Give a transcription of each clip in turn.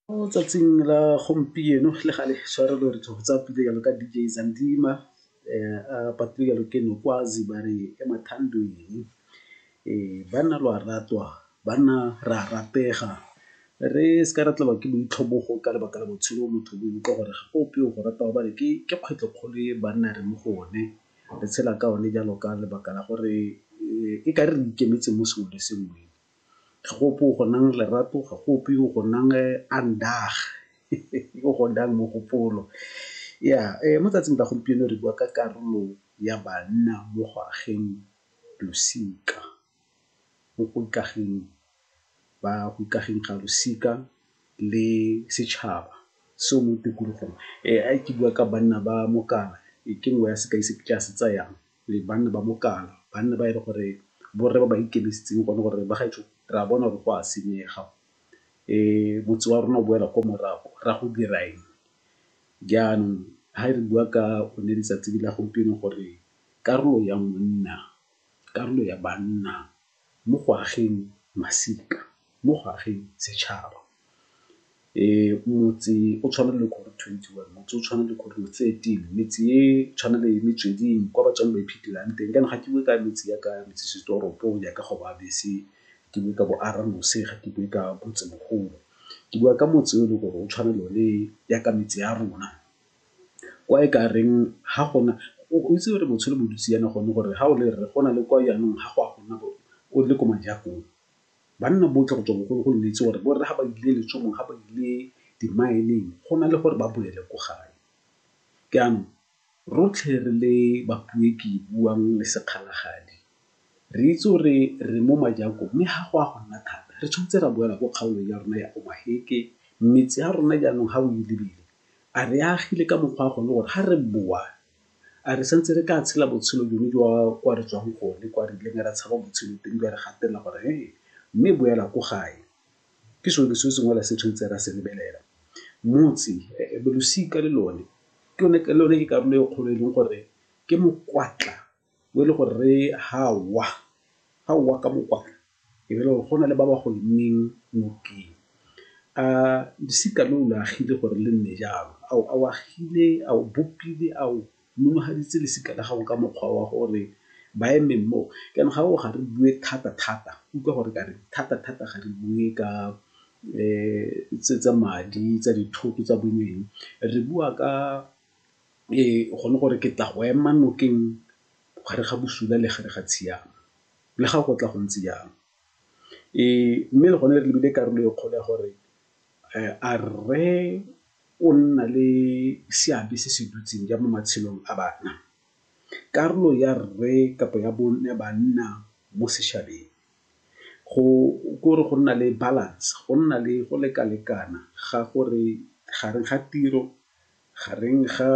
Mo tsatsing la gompieno le gale tshwarelo re tlo go tsaya pina jalo ka D_J Zandima a patile jalo ke Nokwazi ba re ke mathando eng. Banna lo a ratwa, banna re a ratega re seka ra tlelwa ke boitlhobogo ka lebaka la botshelo bo motho bo utlwa gore ga go ope o go ratang gobane ke kgwetlho kgolo e banna re mo go one. Re tshela ka one jalo ka lebaka la gore e ka re re ikemetseng mo sengwe le sengwe. Ga go ope o go nang lerato, ga go ope o go nang aandag o go nang mogopolo. Ya mo tsatsing la gompieno re bua ka karolo ya banna mo go ageng losika, mo go ikageng ba go ikageng ga losika le setšhaba se o mo tikologong. Ke bua ka banna ba mokana ke nngwe ya sekai se ke tla se tsayang. le banna ba mokana, banna ba e le gore borre ba ba ikemisitseng gone gore, bagaetsho re a bona gore go a senyega, motse wa rona o boela ko morago, re ya go dira eng? Jaanong ha re bua ka one letsatsi la gompieno gore karolo ya monna, karolo ya banna. mo go ageng masika, mo go ageng setšhaba. Motse o tshwana le ko twenty one, motse o tshwana le ko thirteen, metse e tshwana le metsweding kwa batswang ba iphetelang teng. Jaanong ga ke bue ka metse ya ka metsesetoropo ya ka go ba bese, ke bue ka bo Arronose, ga ke bue ka Motsemogolo. Ke bua ka motse o e leng gore o tshwana le o ne ya ka metse ya rona. kwa e ka reng ha gona o itse gore botshelo bo dutse yana gone gore ha o le rre go na le kwa yanong ga go a gona o le ko majakong. Banna botlhe go tswa bogologolo le itse gore borre ga ba ile letsholong, ga ba ile di-mine-ng go na le gore ba boele ko gae. Jaanong rotlhe re le ke buang le sekgalagadi. Re itse gore re mo majako mme ga go a go nna thata re tshwanetse ra boela ko kgaolong ya rona ya Omaheke. Metse ya rona jaanong ga o e lebile a re e agile ka mokgwa wa gone gore ga re boa a re santse re ka tshela botshelo jone jwa kwa re tswang gone kwa re ileng ra tshaba botshelo teng jwa re gatelela gore mme boela ko gae. Ke sone se sengwe fela se tshwanetseng ra se lebelela. Motse, losika le lone ke lone ke karolo e kgolo e leng gore ke mokwatla. bo e le gore re ha wa, ga o wa ka mokwatla e be e le gore go na le ba ba go emeng nokeng. A losika lo o lo agile gore le nne jalo? A o agile, a o bopile, a o monogaditse losika la gago ka mokgwa wa gore ba eme moo? Jaanong ga re re ga re bue thata-thata, utlwa gore ke a reng, thata-thata ga re bue ka tse tsa madi, tsa dithoto, tsa boneng, re bua ka go ne gore ke tla go ema nokeng gare ga bosula le gare ga tshiamo le ga go tla go ntse jang. Mme le gone re lebile karolo e kgolo ya gore a rre o nna le seabe se se dutseng jang mo matshelong a bana. Karolo ya rre kapa ya bone banna mo setšhabeng ke gore go nna le balance, go nna le go leka-lekana ga gore gareng ga tiro Gareng ga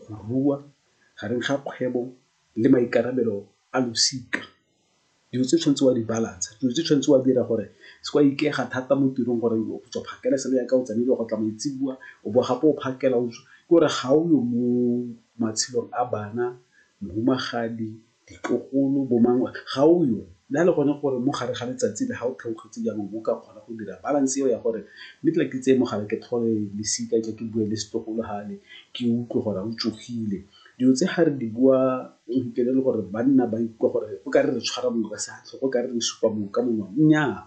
go rua, gareng ga kgwebo le maikarabelo a losika, dilo tse o tshwanetseng wa di balance-a, dilo tse o tshwanetseng wa di dira gore o seke wa ikaega thata mo tirong gore o tswa phakela e sale ya ka, o tsamaile go tla maitseboa, o bowa gape o phakela. Ke gore ga o yo mo matshelong a bana, mohumagadi, ditlogolo, bo mang, ga o yo. Le ha le gone gore mo gare ga letsatsi le ga o theogetse jaanong o ka kgona go dira balance eo ya gore mme tla ke tseye mogala ke tlhole lesika tle ke bue le setlogolo gale ke utlwe gore a o tsogile. Dilo tse ga re di bua o fitlhele e le gore banna ba ikutlwa gore o kare re tshwara mongwe ka sefatlhego, o kare re supa mongwe ka monwana. Nnyaa,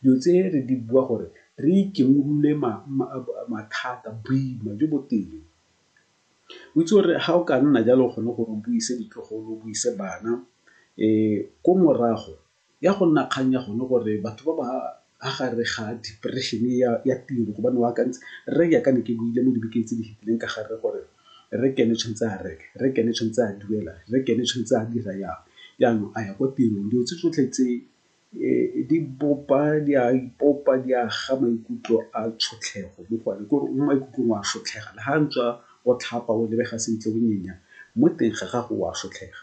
dilo tse re di bua gore re ikemolole mathata, boima jo bo teng. O itse gore ga o ka nna jalo o kgone gore o buise ditlogolo, o buise bana ko morago ya go nna kgang ya gone gore batho ba ba fa gare ga depression ya tiro gobane o akantse rre jaaka ne ke buile mo dibekeng tse di fetileng ka gare gore rre ke ene o tshwanetse a reke, rre ke ene o tshwanetse a duela, rre ke ene o tshwanetse a dira jang, jaanong a ya kwa tirong. Dilo tse tsotlhe tse di bopa di a ipopa di a ga maikutlo a tshotlhego mo go one kore o mo maikutlong wa sotlhega le ga ntswa o tlhapa o lebega sentle o nyenya mo teng ga gago wa sotlhega.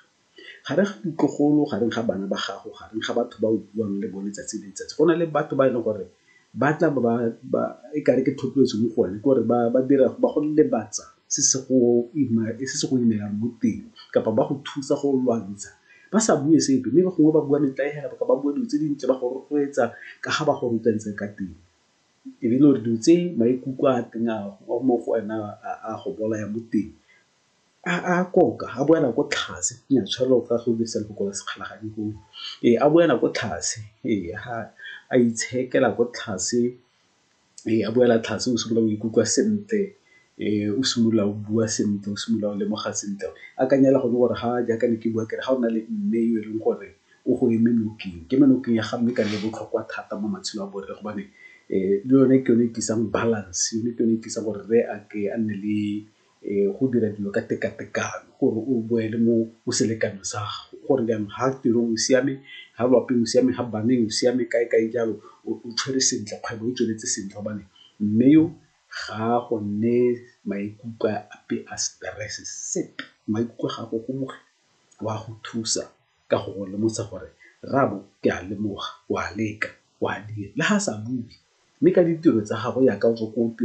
Gareng ga ditlogolo gareng ga bana ba gago gareng ga batho ba o buang le bone tsatsi le letsatsi go na le batho ba e leng gore Ba tla ba ba, e kare ke thotloetso mo go one, ke gore ba ba dira, ba go lebatsa se se go imelang mo teng kapa ba go thusa go lwantsha ba sa bue sepe mme gongwe ba bua metlae fela kapa ba bua dilo tse dintle ba go rotloetsa ka ga ba go rotloetsa ka teng. E be e le gore dilo tse maikutlo a teng a mo go wena a go bolaya mo teng. A koka a boa nako tlhase ya tshwere o ka go dirisa lefoko la sekgala ga di gole ee a boela ko tlase ee ha a itshekela ko tlase ee a boela tlase o simolola go ikutlwa sentle ee o simolola o bua sentle o simolola o lemoga sentle akanya hela gone gore ha jaaka ne ke bua kere ga o na le mme yo e leng gore o go eme nokeng ke eme nokeng ya ga mme ka nne botlhokwa thata mo matshelong a bone re gobane le yone ke yone e tlisang balance yone ke yone e tlisang gore rre a ke a nne le. go dira dilo ka tekatekano gore o boele mo o selekanyo sa gago gore jaanong ga tirong o siame ga lwapeng o siame ga baneng o siame kae kae jalo o tshwere sentle kgwebo e tsweletse sentle gobane mme yo ga go nne maikutlo ape a stress sepe maikutlo ga go gomogile wa go thusa ka go go lemosa gore rrabo ke a lemoga o a leka o a dira le ga sa bue mme ka ditiro tsa gago yaka o tswa ko tirong.